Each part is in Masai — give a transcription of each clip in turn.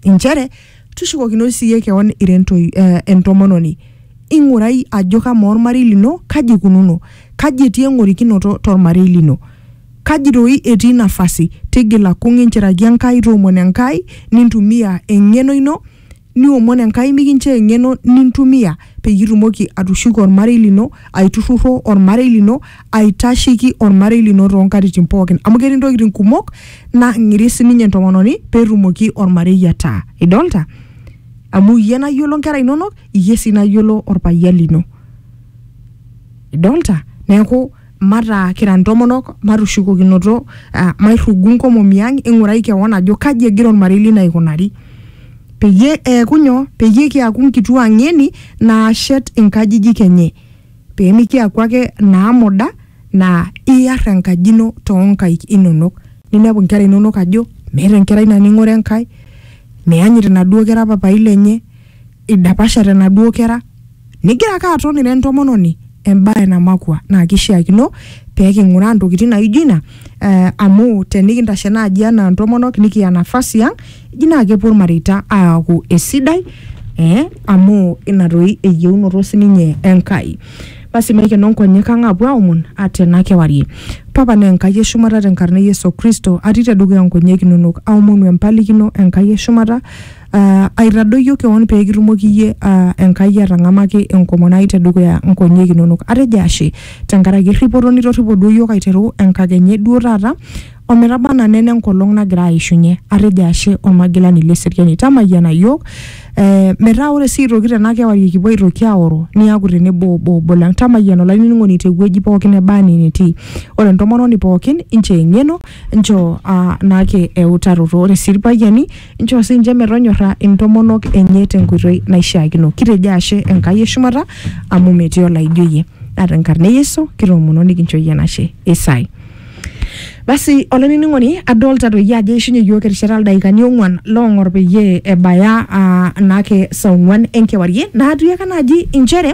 inchere tushukokino siiyie kewon ira entoi, eh, entomononi ing'urai ajo kamaa ormarei lino kaji ikununo kaji etii eng'orikinoto tormarei lino kaji doi etii nafasi tigila kung inchiraki enkai toomon enkai nintumia eng'eno ino niomon enkai mikinchoo eng'eno nintumia peyie itumoki atushuko ormarei lino, aiturrurro ormarei lino, aitasheki ormarei lino toonkatitin pookin. Amu ketii ntokitin kumok naang'iri sininye entomononi peetumoki ormarei ataa. Idolta? Amu iyie nayiolo nkera inonok, iyie sii nayiolo orpayian lino. Idolta? Neeku mataa kira ntomonok matushukokinoto uh, mairrugu nkomomi ang ing'urai kewon ajo kaji egira ormarei lino aikunari peyie eeku nyoo peyie kiaku nkituaa ng'eni naashet inkajijik enye peemikiaku ake naamuda naa iyar enkaji ino toonkaik inonok ninepu inkera inonok ajo meeta enkerai naning'ore enkae meyanyit inaduo kera papai lenye idapashate inaduo kera Nigira ake aton ira entomononi embae namakua naa kishiakino pee king'uraa ntokitin naijo ina eh, amu tenikintashe naaji anaa ntomonok nikiya nafasi ang eji naa kepuo ilmareita aaku esidai eh, amu ina doi eyieunoto sininye Enkai. Basi maikeno nkonyek ang apuo aomon ate ena kewarie. Papa naa Enkai e shumata tenkarna e Yesu Kristo atii tedukuya nkonyek inonok aomonu empalikino Enkai e shumata Aa aitadoyio keon pee kitumoki iyie aa Enkai atang'amaki enkomono ai tedukuya nkonyek inonok. Atejo ashe tenkaraki erripoto nitorripo duo iyiook aiteru enkakenya e duo taata o metaba anaa nena enkolong nagira aishunye. Atejo ashe Olmagilani le seriani. Tamayiana iyiook ee metaa ore sii aitoki tena kewarie kipuo aitoki aoro niaku tenebo obo obo lang. Tamayiana olainining'oni te wueji pookin neba enaa enitii. Ore entomononi pookin nchoo eng'eno nchoo aa naake eutaroto. Ore sii irpayiani inchoo sii ninche metonyorra intomonok enye tenkoitoi naishiakino kitejo ashe enkai eshumata amu metii olaijo iyie naa tenkarna e yesu kitoomono nikincho iyie enashe isai basi olainining'oni adolta toi ajo eishunye iyiook erishata ildaikani ong'uan loong'or peyie ebaya uh, naake saa ong'uan enkewarie naatiaka naaji inchere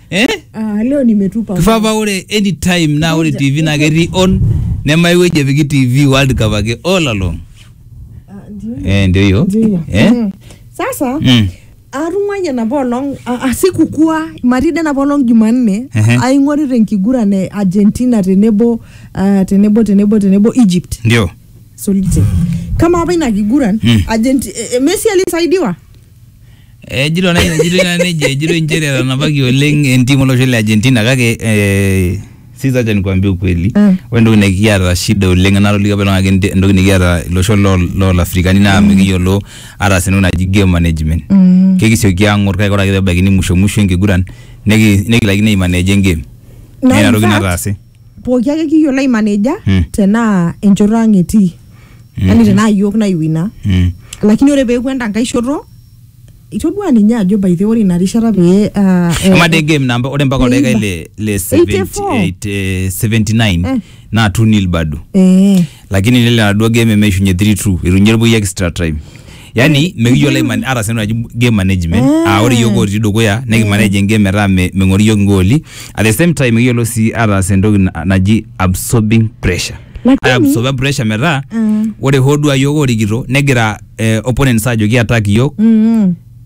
eh? Ah, leo nimetupa. kifaa paa ore anytime naa ore tv naa ketii on nemae wueji epiki tv world cup ake all along Ah, ndio. eh, ndio hiyo Ndio. eh? Mm. Sasa mm. atung'wayie enapa olong a- a- sikukua marida enapa olong jumanne Ehe. aing'orita enkiguran e argentina tenebo ah, tenebo tenebo tenebo egypt ndio solite kama apa ina kiguran Mm. Argenti- eh, eh, messi alisaidiwa Ejito na ejito na neje ejito inchere etanapaki oleng entim olosho le Argentina kake eh, sisi acha nikwambie ukweli Mm. ore entoki nikiata shida oleng enatolikio apa iltung'anak ente- entoki nikiata iloshon loo- loo Afrikani naa mikiyiolo ataas entoki naji game management Mm. kekisioki ang'or kake ore ake pebaikini musho musho enkiguran niki- nikilaikino aimaneja engame Naa naa inatoki in fact, nataase pooki ake kiyiolo aimaneja Mm. tenaa enchoto ang etii yani tenaa yiok naiwina Mm. lakini ore peeku enda nkae shoto itodua ninye ajo by the way, ore ina rishata pee ah, eh, ama de game namba ore mpaka oldaika Eighty- le le 70 84. eight, eh, 79 Eh. naa 2 nil bado eh, lakini nelo enaduo game emeishunye 3-2 eitunyie irpuyi extra time yani mikiyiolo aiman- ata sii naji game management aa ore yiok otii dukuya nikimanage engame metaa me- meng'ori yiok ingooli at the same time mikiyiolo sii ataas entoki na- naji absorbing pressure Lakini- Ai absorba pressure metaa Mm. ore hoo duo aa yiok orikito negira eh, opponents ajoki attack yiok Mm.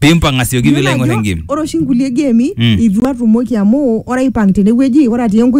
pimpang asioki Iyiolo piilo aing'or ajo engem ore oshi nkulie gemi Mm. itu atumoki amu ore aipang tenewueji ore atii enkoitoi